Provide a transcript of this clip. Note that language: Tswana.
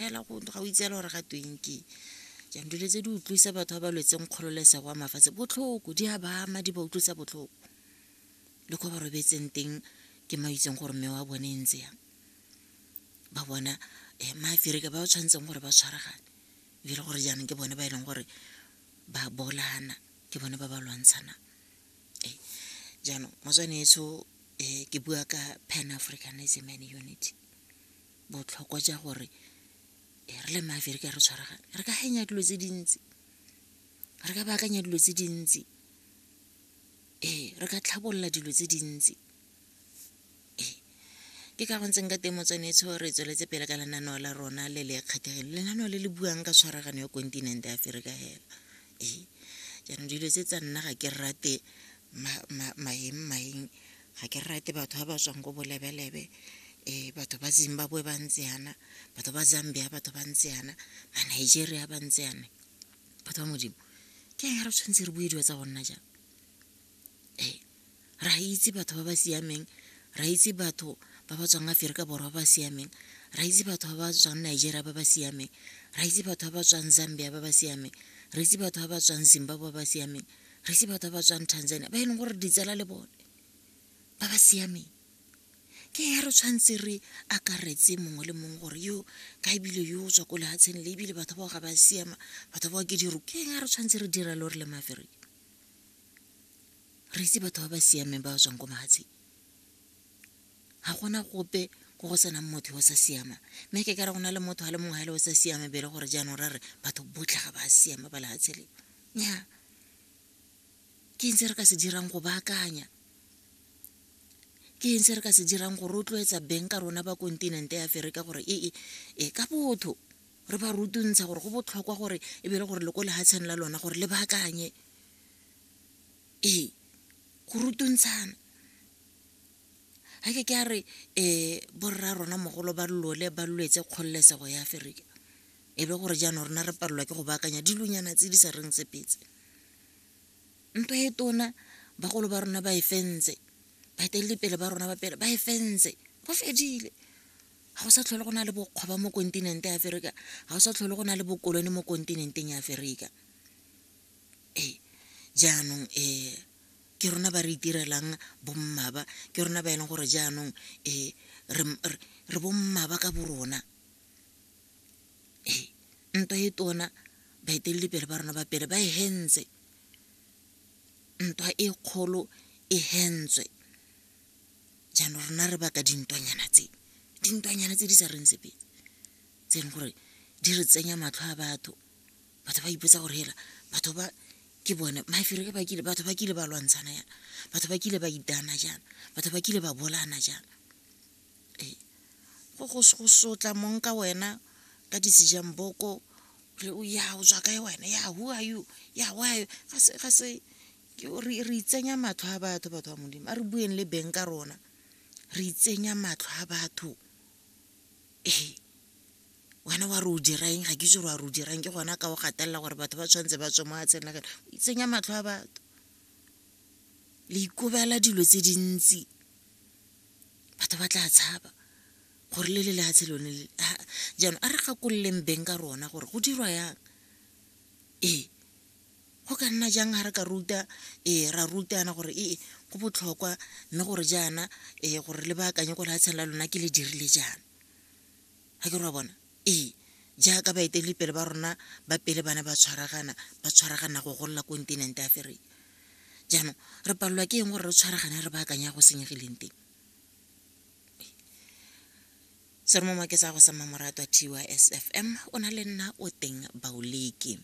fela go ga o itseela gore ga tweng ke jang dilo tse di utlwisa batho ba ba lwetseng kgololesego wa mafatshe botlhoko di a ba ama di ba utlwisa botlhoko le ko ba robetseng teng ke ma itseng gore mme wa bone e ntse yang ba bona um maaferika ba ba tshwanetseng gore ba tshwaragane e le gore jaanong ke bone ba e leng gore ba bolana ke bone ba ba lwantshanang ee jaanong motswaneetsho um ke bua ka pan africanism and unity botlhokwa ja gore e re le maveri ka re tshwaragane re ka hanya dilo tse dintsi re ka baakanya dilo tse dintsi ee re ka tlhabolola dilo tse dintsi ee ke ka go ntseng ka teng motswanetsho re tsweletse pele ka lenaneo la rona le le kgethegile lenaneo le le buang ka tshwaragano ya kontinente ya aferika hela ee jaanong dilo tse tsa nna ga ke rate maeng maeng ga ke rate batho ba ba tswang ko bolebelebe um batho ba zimbabwe ba ntse yana batho ba zambia batho ba ntse yana ba nigeria ba ntse yana batho ba modimo ke eng re tshwanetse re bue dilo tsa go nna jang ee ra itse batho ba ba siameng ra itse batho ba ba tswang aferika borwa ba ba siameng ra itse batho ba ba tswang nigeria ba ba siameng ra itse batho ba ba tswang zambia ba ba siameng re itse batho ba ba tswang zimbabwe ba ba siameng re se batho ba ba tswang tanzania ba e leng gore ditsela le bone ba ba siameng ke ya re tshwanetse re akaretse mongwe le mongwe gore yo ka ebile yo o tswa ko lehatsheng le ebile batho bao ga ba siama batho bao ke diro ke ya re tshwanetse re dira le gore le mafereke re itse batho ba ba siameng ba ba tswang ko mahatsheng ga gona gope ko go senang motho yo o sa siama mme ke ka re go na le motho a le mongwe ga e le o sa siama bele gore jaanong ra re batho botlhe ga ba siama ba lehatshe leo nnyaa ke eng se re ka se dirang go baakanya ke eng se re ka se dirang go rotloetsa beng ka rona ba kontinente ya aferika gore ee e ka botho re ba rutuntsha gore go botlhokwa gore e be le gore le ko lehatsheng la lona gore le baakanye ee go rutuntshana ga ke ke a re um borra rona mogolo ba lole ba lwetse kgololesego ya aferika e be gore jaanong rona re palelwa ke go baakanya dilonyana tse di sa reng tsepetse ntwa e tona bagolo ba rona ba e fentse baeteledipele ba rona ba pele ba e fentse go fedile ga go sa tlhole go na le bokgwaba mo kontinente ya aferika ga go sa tlhole go na le bokolone mo kontinenteng ya aferika ee jaanong um ke rona ba re itirelang bommaba ke rona ba e leng gore jaanong um re bommaba ka bo rona ee ntwa e tona baeteledipele ba rona ba pele ba e hentse ntwa e kgolo e hentswe jaanong rona re baka dintwanyana tse dintwanyana tse di sa reng sepe tse e leng gore di re tsenya matlho a batho batho ba ipotsa gore hela batho ba ke bone mafere ke bakile batho ba kile ba lwantshana yana batho ba kile ba itana jana batho ba kile ba bolana jana ee go go sotla mong ka wena ka decision boko re o ya o tswa kae wena ya who are you ya why ga se ga se re re itsenya matlho a batho batho ba modimo a re bueng le beng ka rona re itsenya matlho a batho ee wena wa re o dirang ga ke itse gore wa re o dirang ke gona ka o gatelela gore batho ba tshwanetse ba tswe mo a tsenela kene o itsenya matlho a batho le ikobela dilo tse dintsi batho ba tla tshaba gore le le lehatshe lone le jaanong a re gakololeng beng ka rona gore go dirwa yang ee go ka nna jang ga re ka ruta ee ra rutana gore ee go botlhokwa mme gore jaana ee gore le baakanye ko lehatsheng la lona ke le dirile jaana Ga ke re wa bona? Ee, jaaka baeteledipele ba rona ba pele ba ne ba tshwaragana, ba tshwaragana go golola kontinente ya Aferika. Jaanong, re palelwa ke eng gore re tshwaragane re baakanya go senyegileng teng? Seromo Maketsa go sa Mmamoratwa, TYSFM, o na le nna o teng Baoleke.